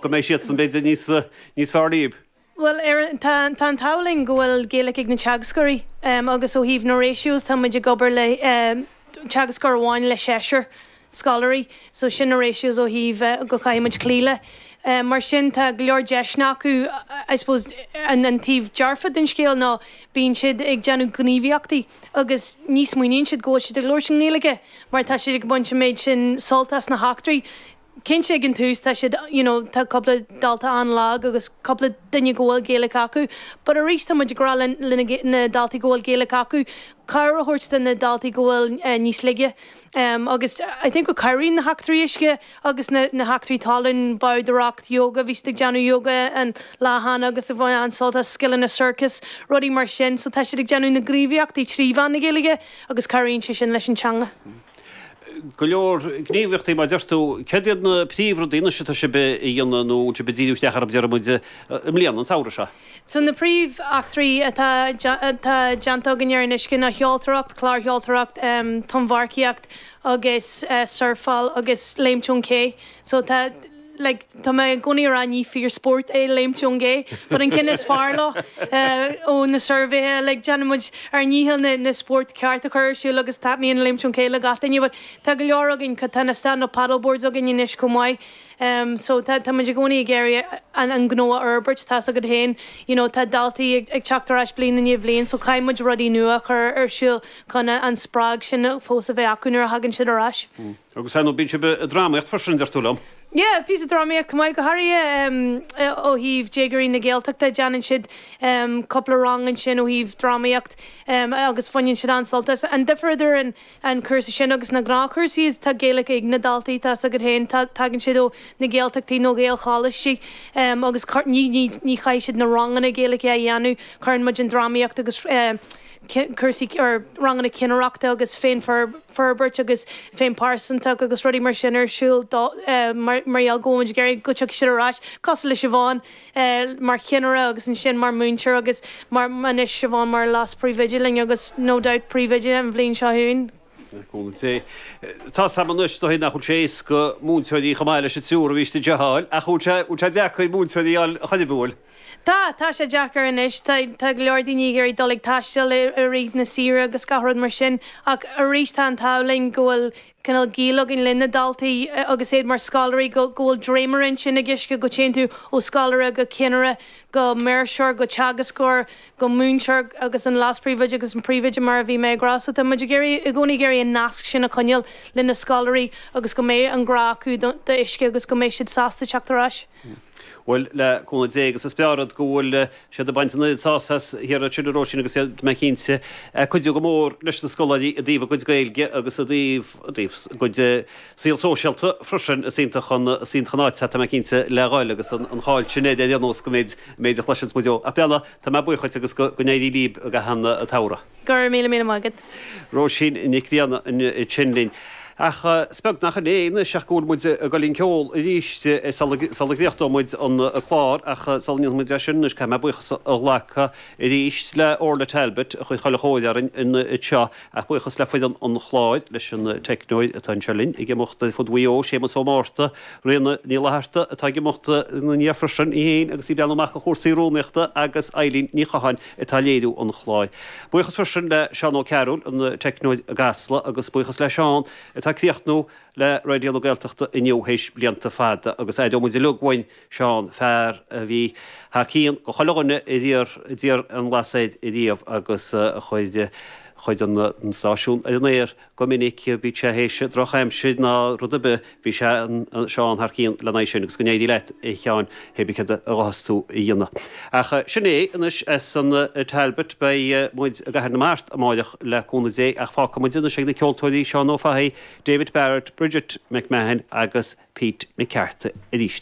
go mbeidh siadsan, b'fhéidir, níos fearr riamh. Bhuel, tá an t-ádh linn go bhfuil Gaelic ag na teagascóirí agus ó thaobh na ratios tá muid ag obair le teagascóir amháin le seisear scoláirí so sin na ratios ó thaobh go caithfidh muid cloí leo. Mar sin tá go leor deiseanna acu I suppose an taobh dearfa den scéal ná bíonn siad ag déanamh gníomhaíochtaí agus ní smaoiníonn siad go bhfuil siad ag labhairt i nGaeilge mar tá siad ag baint an méid sin sult as na heachtraí. cinnte ag an tús tá siad you know tá cúpla dalta an-lag agus cúpla duine go bhfuil Gaeilic acu but arís tá muid ag rá le le na daltaí go bhfuil Gaeilic acu cabhair a thabhairt do na daltaí go bhfuil níos laige em agus I think go cabhraíonn na heachtraí uisce agus na na heachtraí talún bádóireacht yoga bhí siad ag déanamh yoga an lá cheana agus bhain an-sult as scileanna circus rudaí mar sin so tá siad ag déanamh na gníomhaíochtaí trí mheán na Gaeilge agus cabhraíonn sé sin leis an teanga. go leor gníomhaíochtaí mar a deir tú. Céard iad na príomhrudaí, anois atá sibh a dhéanamh nó atá sibh ag díriú isteach orthu, déarfaidh muid, i mbliana, an samhradh seo? So na príomheachtraí atá atá déanta againn ar an uisce ná seoltóireacht, clársheoltóireacht, tonnmharcaíocht agus surfáil agus léimt ón gcé. So tá. like tá mé i gcónaí a rá ní fíor spórt é léimt ón gcé but an ceann is fearr leo ó na suirbhéithe like déanann muid ár ndícheall na na spóirt ceart a chur ar siúl agus taitníonn léimt ón gcé le gach duine but tá go leor againn cad tá na stand up paddle boards againn anois chomh maith um so tá tá muid i gcónaí ag iarraidh an an gnó a fhorbairt tá's agat féin you know tá daltaí ag ag teacht ar ais bliain i ndiaidh bhliain so caithfidh muid rudaí nua a chur ar siúl chun an spreag sin fós a bheith acu nuair a thagann siad ar ais. Agus ar ndóigh, bíonn sibh ag drámaíocht freisin, deir tú liom? Yeah, píosa drámaíocht chomh maith, go háirithe ó thaobh déagoirí na Gaeltachta, déanann siad cúpla rang ansin ó thaobh drámaíocht agus baineann siad an-sult as. An difear idir an cúrsa sin agus na gnáthchúrsaí is tá Gaeilge ag na daltaí, tá 's agat féin, tagann siad ó na Gaeltachtaí nó Gaelcholáistí agus ní chaithfidh siad na ranganna Gaeilge a dhéanamh, cuireann muid an drámaíocht agus cúrsaí, or ranganna cinnireachta agus féinfhorbairt agus féinphearsantacht agus rudaí mar sin ar siúl dóibh, mar gheall go bhfuil muid ag iarraidh go tiocfaidh siad ar ais, cosúil le Siobhán mar chinnire agus ansin mar múinteoir agus mar, anois Siobhán mar leas-príomhoide linn agus no doubt príomhoide an bhliain seo chugainn. Cinnte. Tá a fhios agam anois, is dóigh nach bhfuil sé éasca múinteoirí chomh maith leis an triúr a bhí istigh a fháil, ach an bhfuil sé, an bhfuil sé deacair múinteoirí a fháil a choinneadh, an bhfuil? Tá, tá sé deacair anois. Tá, tá go leor daoine ag iarraidh dul ag taisteal i, i rith na saoire agus gach rud mar sin. Ach arís tá an t-ádh linn go bhfuil cineál gaol againn le na daltaí agus iad mar scoláirí go, go bhfuil dréimire ansin ag UISCE go dtéann tú ó scoláire go cinnire go maoirseoir go teagascóir go múinteoir agus an leaspríomhoide agus an príomhoide mar a bhí mé ag rá. So tá muid ag iarraidh, i gcónaí ag iarraidh an nasc sin a choinneáil le na scoláirí agus go mbeidh an grá acu do, do UISCE agus go mbeidh siad sásta teacht ar ais. Bhuel, le cúnamh Dé agus is fearrde go bhfuil siad ag baint an oiread sásaimh as thíos ansin a Róisín agus iad, tá mé cinnte, ag cuidiú go mór leis na scoláirí i dtaobh a gcuid Gaeilge agus i dtaobh, i dtaobh a gcuid saol sóisialta freisin. Is iontach an, is iontach an áit, tá mé cinnte, le dhoil agus an, an cháil sin air ar aon nós go méid, an méid a chloiseanns muid faoi. Ach, bhuel anois, tá mé buíoch dhuit agus go, go n-éirí líb i gcaitheamh an tsamhraidh. Go raibh míle, míle maith agat. Róisín Nic Grianna ansin linn. Ach is beag nach in é anois ach go bhfuil muid ag dul i gceol arís sula gcríochnóidh muid an clár ach sula ndéanfaimid é sin anois caithfidh mé buíochas a ghlacadh arís le Orla Talbot a chuir chuile chóir orainn anseo ach buíochas le foireann an chláir, leis an teicneoir atá anseo linn ag imeacht ar fud Mhaigh Eo, Séamus Ó Márta, Ríona Ní Fhlatharta atá ag imeacht ina ndiaidh freisin, í fhéin agus í i mbun cúrsaí rúnaíochta agus Eileen Ní Chatháin. atá ag léiriú an chláir. Buíochas freisin le Seán Ó Cearúil, an teicneoir i gCasla, agus buíochas le Seán, atá ag críochnú le Raidió na Gaeltachta inniu théis blianta fada, agus aireoimid uilig uainn Seán, fear a bhí thar cionn go chuile dhuine ariamh a d'iarr an lasair ariamh agus a chuir chuir an stáisiún ar an aer. Go minic bíodh sé théis droch aimsir ná rud ar bith bhí sé anseo ann thar cionn lena aghaidh sin agus go n-éirí leat a Sheáin hé bí céard a ghabhfas tú a dhéanamh. Ach sin é anois as an Talbot beidh muid i gCathair na Mart amáireach le cúnamh Dé ach fágfaidh muid anois ag na ceoltóirí Seán Ó Fathaigh, David Barrett, Bridget McMahon agus Pete McCarthy arís.